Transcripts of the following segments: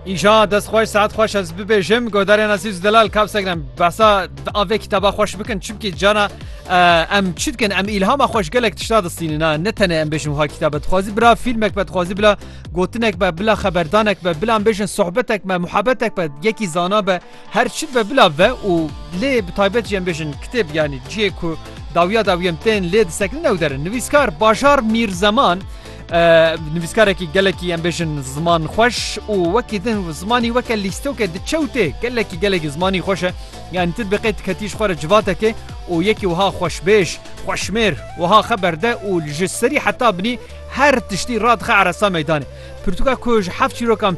Îja dest xweş saet xweş ez bibêjim godarên Azîz Delal kap segrem behsa di avê kitaba xweş bikin çimkî cana em çi dikin em îlhama xweş gelek tişta distînina ne tenê em bêjin wiha kitabe dixwazî bira fîlmek be dixwazî bila gotinek be bila xeberdanek be bila em bêjin sohbetek me muhebetek be yekî zana be Her çi ve bila ve û lê bi taybet jî em bêjin kitêb yanî cihê ku dawiya dawî em tên lê disekinin ew derin. Nivîskar Bajar Mîrzeman nivîskarekî gelekî em bêjin ziman xweş û wekî din zimanî weke lîstoke diçewtê gelekî gelekî zimanî xweş e. Yanî tu dibiqê diketî ji xwe re civatekê û yekî wiha xweşbêj, xweşmêr wiha xwe berde û li ji serî heta binî her tiştî radixe eresa meydanê. Pirtûka ku ji heft çîrokan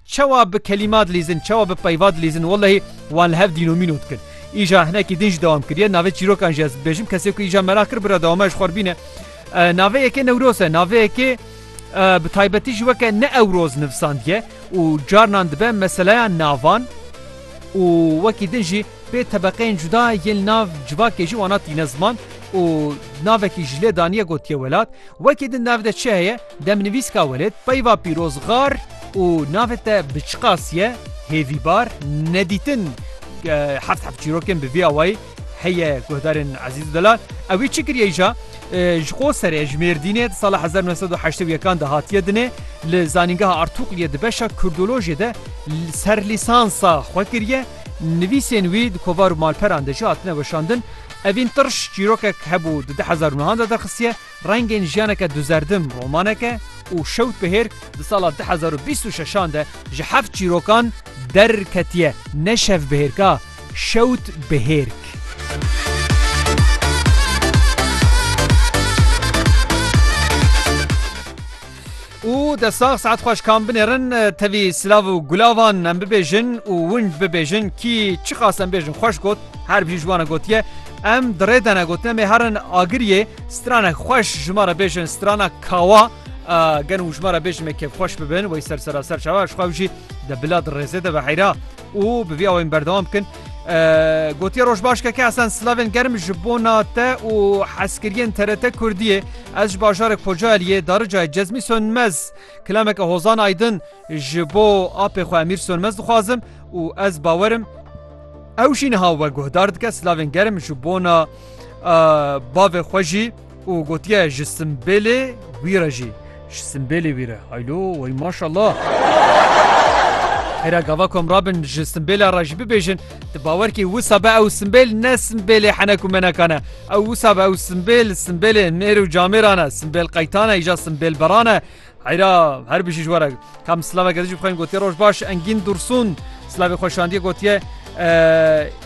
Çawa bi kelîma dilîzin, çawa bi peyva dilîzin, wellehî wan li hev dînomîno dikir. Îja hinekî din jî dewam kiriye. Navê çîrokan jî ez bibêjim, kesê ku îja meraq kir bira dewama ji xwe re bîne. Navê yekê Newroz e. Navê yekê bi taybetî jî weke Neewroz nivisandiye û carinan dibe meseleya navan û wekî din jî pê tebeqeyên cuda yên li nav civakê jî wana tîne ziman û navekî ji lê daniye gotiye welat. Wekî din di nav de çi heye? Demnivîska welêt peyva pîroz xar û navê te bi çi qasiye, hêvîbar, nedîtin heft heft çîrokên bi vî awayî heye guhdarên Ezîz Delal ewî çi kiriye îja ji xwe serê ji Mêrdînê di sala hezar nû sed û heştê û yekan de hatiye dinê li zanîngeha Artûqliyê di beşa kurdolojê de serlîsansa xwe kiriye nivîsên wî di kovar û malperan de jî hatine weşandin evîn tirş çîrokek hebû di di hezar û nihan de derxistiye Rengên jiyaneke duzerdim romanek e û Şewt Bihêr di sala du hezar û bîst û şeşan de ji heft çîrokan derketiye. Ne Şevbihêrk a, Şewt Bihêrk. Û dest sax saet xweş kam binêrin tevî silav û gulavan em bibêjin û wind bibêjin kî çiqas em bêjin xweş got her bî ji wan gotiye em dirê dene gotin em ê herin agiriyê stranek xweş ji me re bêjin strana kawa gen û ji me re bêjin me kevxweş bibin wey ser seraser çawa ji xwe jî de bila di rêzê de ve heyra û bi vî awê min berdewam bikin. Gotiye roj baş keke esen silavên germ ji bona te û heskiriyên TRT Kurdiyê ez ji bajarek Kocaeliyê daricayê Cezmî Sönmez kilameke hozan aydin ji bo apê xwe Emîr Sönmez dixwazim û ez bawerim ew jî niha we guhdar dike silavên germ ji bona bavê xwe jî û gotiye ji simbêlê wî re jî ji simbêlê wî re haylo wey maşallah. Hêra gava ku em rabin ji simbêla re jî bibêjin tu bawer kî wisa be ew simbêl ne simbêlê henek û menekan e. Ew wisa be ew simbêl simbêlê nêr û camêran e, simbêl qeytan e îja simbêlberan e. Heyra her bijî ji were kam silava gedijî bixwên gotiye roj baş engîn dursun silavê xweşandiye gotiye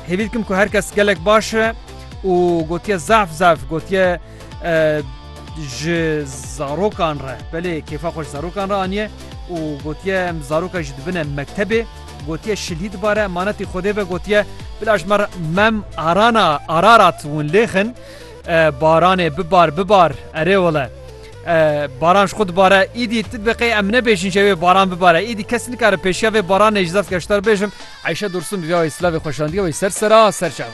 hêvî dikim ku herkes gelek baş e û gotiye zaf zaf gotiye ji zarokan re belê kêfa xweş zarokan re aniye û gotiye em zaroka ji dibine mektebê gotiye şilî dibare manetî xwedê ve gotiye bila ji mer mem arana ararat hûn lêxin baranê bibar bibar erê wele Baran ji xwe dibare, îdî ti biqê em nebêjin ji wê baran bibare. Îdî kes nikare pêşiya vê baranê ji zevke ji te re bêjim. Eyşe Dursun bi viyawê silavê xweşandiye wê ser sera ser çava.